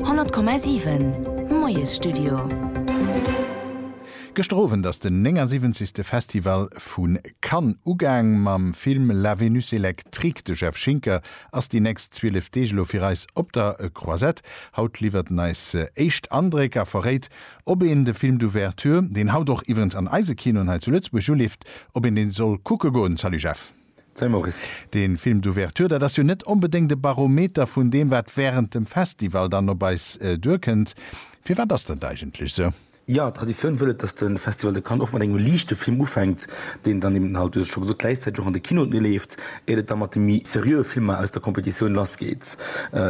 100,7 Moiesstudio. Gëschter Owend ass den 79. Festival vu Cannes ugaang mam Film La Vénus électrique. De Jeff Schinker ass déi nächst 12 Deeg elo fir eis op der Croisette. Haut liwwert en eis éischt Andréck a verréit, ob een de Film d'Ouverture, deen haut och iwwerens an eise Kinoen hei zu Lëtzebuerg uleeft, ob een dee soll kucke goen. Salut Jeff. Salut Maurice. Deen Film d'ouverture, dat ass jo net onbedéngt e Barometer vun deem wat während dem Festival dann op eis duerkënnt. Firwat ass dat eigentlech sou? Jo, d'Traditioun wëll et, dass de Festival de Cannes och mat engem liichte Film ufänkt, deen dann eben halt, du hues et scho gesot, gläichzäiteg och an de Kinoen leeft, éiert et da mat de méi seriöe Filmer aus der Competitioun lassgeet.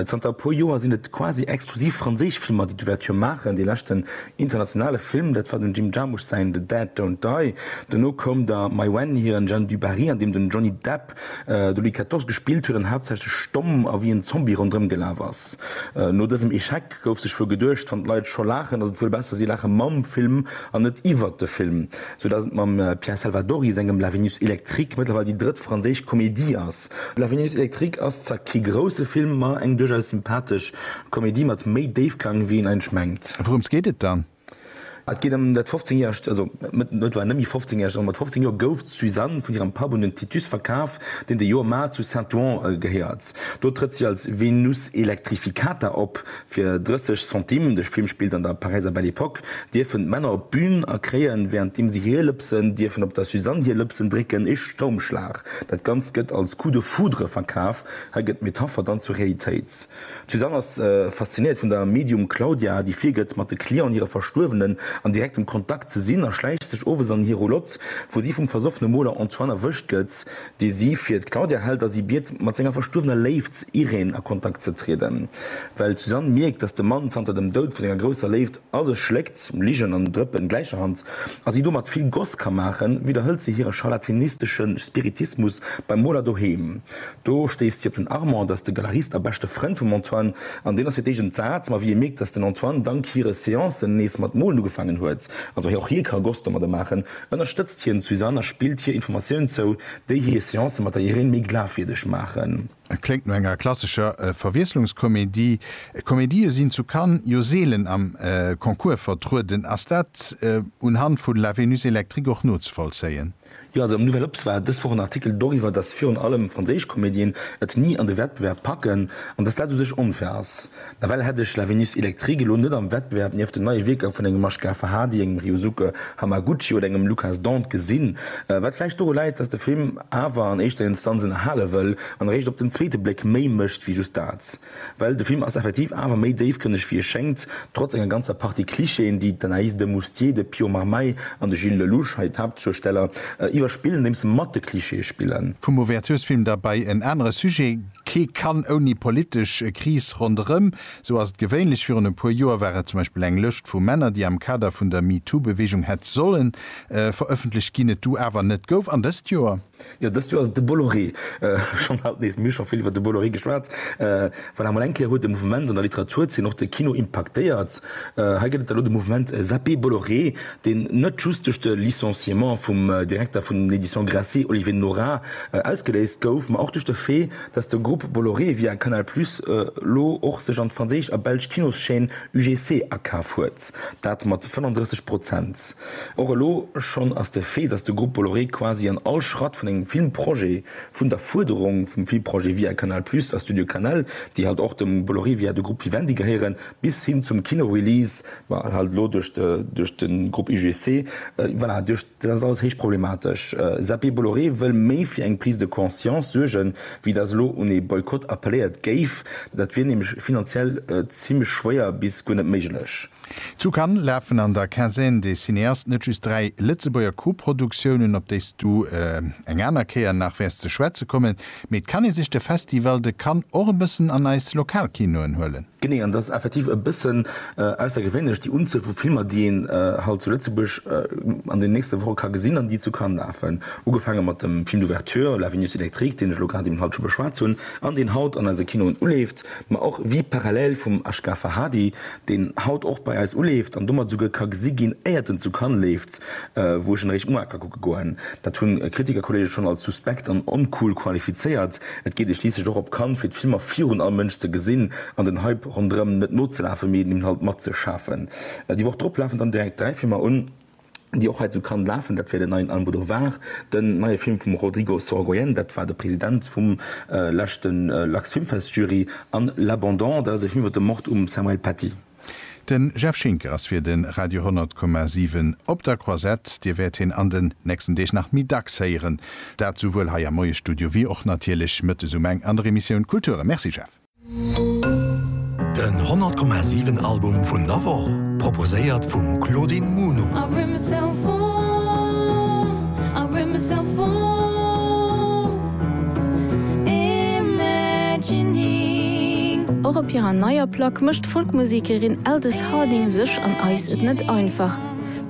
Zanter e puer Joer sinn et quasi exklusiv franséisch Filmer, déi d'Ouverture maachen. Dee leschten Internationale Film, dat war dem Jim Jarmusch säin The Dead Don't Die. Dono koum da Mai Wen hiren Jeanne du Barry, an deem den Johnny Depp de Louis xiv gespillt huet an haaptsächlech stomm a wéi en Zombie ronderëm gelaf ass. No dësem Echec gouf sech wuel geduecht, wann d'Leit scho laachen, ass et wuel besser si laache mam Film an net iwwert de Film. Soudass et mam Pierre Salvadori sengem La Vénus électrique mëttlerweil déi drëtt franséisch Komedie ass. La Vénus électrique ass zwar kee grousse Film, ma eng duerchaus sympathesch Komedie mat méi Déifgang wéi een eigentlech mengt. Wourëms geet et dann? Et geet ëm dat 15 järegt, also mëttlerweil net méi 15 järegt, also mat 15 Joer gouf d'Suzanne vun hirem Papp un den Titus verkaf, deen de Joe Mar zu Saint-Ouen gehéiert. Do trëtt si als Venus electrificata op. Fir 30 Centimes, de Film spillt an der Paräiser Belle Epoque, dierfen d'Männer op d'Bün a kréien, währenddeem si hir Lëpsen dierfen op der Suzanne hir Lëpsen drécken, ee Stoumschlag. Dat Ganzt gëtt als Coup de foudre verkaf. Hei gëtt d'Metapher dann zur Realitéit. D'Suzanne ass faszinéiert vun der Medium Claudia, déi virgëtt, mat de Clienten hire Verstuerwenen an direktem Kontakt ze sinn a schläicht sech owes an hir Roulotte, wou si vum versoffene Moler Antoine erwëscht gëtt. dee si fir d'Claudia hält a si biet, mat senger verstuerwener Léift Irène a Kontakt ze trieden. Well d'Suzanne mierkt, datt de Mann zanter dem Doud vu senger grousser Léift alles schléckt, Ligen an Drëppen gläicherhand, a si domat vill Goss ka maachen, widderhëlt se hire charlatinistesche Spiritismus beim Moler doheem. Do stéisst si op den Armand, dat ass de Galerist a beschte Frënd vum Antoine, an deen ass fir d'éischt entsat, ma wéi hie mierkt, datt den Antoine dank hire Seancen nees mat molen ugefaangen huet, also och hie ka Goss domadde maachen, Ënnerstëtzt hien d'Suzanne a spillt hir Informatiounen zou, déi hir Seancë mat der Irène méi glafwierdeg maachen. Kléngt no enger klassescher Verwiesslungskomedie. Komedië sinn zu Cannes jo seelen am Concours vertrueden. Ass dat unhand vu La Vénus électrique och nozevollzéien? Jo, also am Nouvelle Obs war dës Woch en Artikel doriwwer, datt virun allem franséisch Komedien et ni an de Wettbewerb packen an datt dat u sech onfair ass. Nawell hätt ech La Vénus électrique elo net am Wettbewerb nieft den neie Wierker vun engem Ashgar Farhadi, engem Ryosuke Hamaguchi oder engem Lukas Dont gesinn. Wat vläicht doru läit, dass de Film awer an éischter Instanz ënnerhale wëll an eréischt op den zweete Bléck méi mécht wéi just dat. Well de Film ass effektiv awer méi déifgrënneg wéi e schéngt, trotz enger ganzer Partie Clichéen, déi d'Anaïs de Moustier, de Pio Marmaille an de Gilles Lellouche, hei d'Haaptzuesteller, iwwerspillen, andeems se mat de Clichéë spillen. Vum Ouverturesfilm da bei en anere Sujet. Kee kann ouni politesch Kris ronderëm. Esou ass et gewéinlech. Virun e puer Joer war et zum Beispill eng Lëscht vu Männer, déi am Kader vun der MeToo-Beweegung hätt solle verëffentlecht ginn, et du awer net gouf. An dëst Joer? Jo, dëst Joer ass et de Bolloré. Schonn haut nees. Mir hu scho vill iwwer de Bolloré geschwat. Voilà, mol eng Kéier huet de Mouvement an der Literaturzeen och de Kino impaktéiert. Hei gëtt et elo de Mouvement Zappé Bolloré, deen net just duerch de Licenciement vum Direkter vun den Editions Grasset, Olivier Nora, ausgeléist gouf, ma och duerch de Fait, datt de Grupp Bolloré via Canal Plus elo och sech an d'franséisch a belsch Kinoschaîne UGC akaf huet, dat mat 35 Prozent. Och elo schonn ass de Fait, datt de Grupp Bolloré quasi an all Schratt vun engem Filmprojet, vun der Fuerderung vum Filmprojet via Canal Plus a Studio Canal, déi halt och dem Bolloré via de Grupp Vivendi gehéieren, bis hin zum Kinorelease, ma halt elo duerch de duerch de Grupp UGC, voilà, duerch dat ass alles héich problematesch. Zappé Bolloré wëll méi fir eng Prise de conscience suergen, wéi datt elo un ee Boykott appelléiert géif. Dat wier nämlech finanziell zimmlech schwéier bis guer net méiglech. Zu Cannes lafen an der Quinzaine des cinéastes net just dräi Lëtzebuerger Koproduktiounen, op déi s du eng aner Kéier nach wäers ze schwätze kommen, mee et kann ee sech de Festival de Cannes och e bëssen an eis lokal Kinoen huelen. Genee, an et ass effektiv e bëssen aussergewéinlech, déi Unzuel vu Filmer, déi een hei zu Lëtzebuerg an den nächste Woche ka gesinn an déi zu Cannes lafen. Ugefaange mat dem Film d'ouverture La Vénus électrique, deen ech elo grad eben haut scho beschwat hunn an deen haut an eise Kinoen uleeft, ma och Vie parallèle vum Ashgar Farhadi, deen haut och bei eis uleeft an domat esouguer ka gesi ginn, éiert en zu Cannes leeft. wou ech en eréischt Muarker kucke goen. Dat hunn Kritikerkolleege schonn als suspekt an oncool qualifizéiert. Et geet ee schliisslech och op Cannes, fir d'Filmer virun all Mënsch ze gesinn an den Hype ronderëm net nozelafen, mee den Inhalt matzeschafen. Déi Woch drop lafen dann direkt dräi Filmer un, déi och hei zu Cannes lafen. Dat wier den neien Almodovar, den neie Film vum Rodrigo Sorogoyen, dat war de President vum leschte Lux Filmfest Jury, an L'Abandon, dat ass e Film iwwer de Mord um Samuel Paty. De Jeff Schinker ass fir de Radio 100 Komma 7 op der Croisette. Dir wäert hien an den nächsten Deeg nach méi dacks héieren. Dat souwuel hei am Moiesstudio wéi och natierlech mëttes um eng an der Emissioun Kulture. Merci Jeff. Den 100 Komma 7 Album vun der Woch, proposéiert vum Claudine Muno. Och op hirer neier Plack mécht d'Folkmusekerin Aldous Harding sech an eis et net einfach.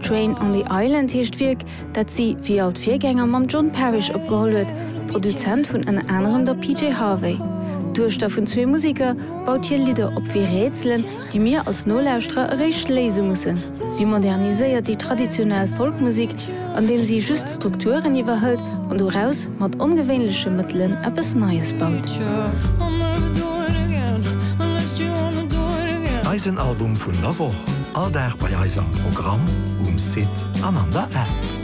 Train on the Island heescht d'Wierk, dat si, wéi all d'Virgänger, mam John Parish opgeholl huet. Produzent vun ënner anerem der PJ Harvey. D'Duechter vun zwee Museker baut hir Lidder op wéi Rätselen, déi mir als Nolauschterer eréischt léise mussen. Si moderniséiert déi traditionell Folkmusik, andeem si just d'Strukturen iwwerhëlt an doraus mat ongewéinleche Mëttelen eppes Neies baut. Eisen Album vun der Woch, all Dag bei eis am Programm, um Site an an der App.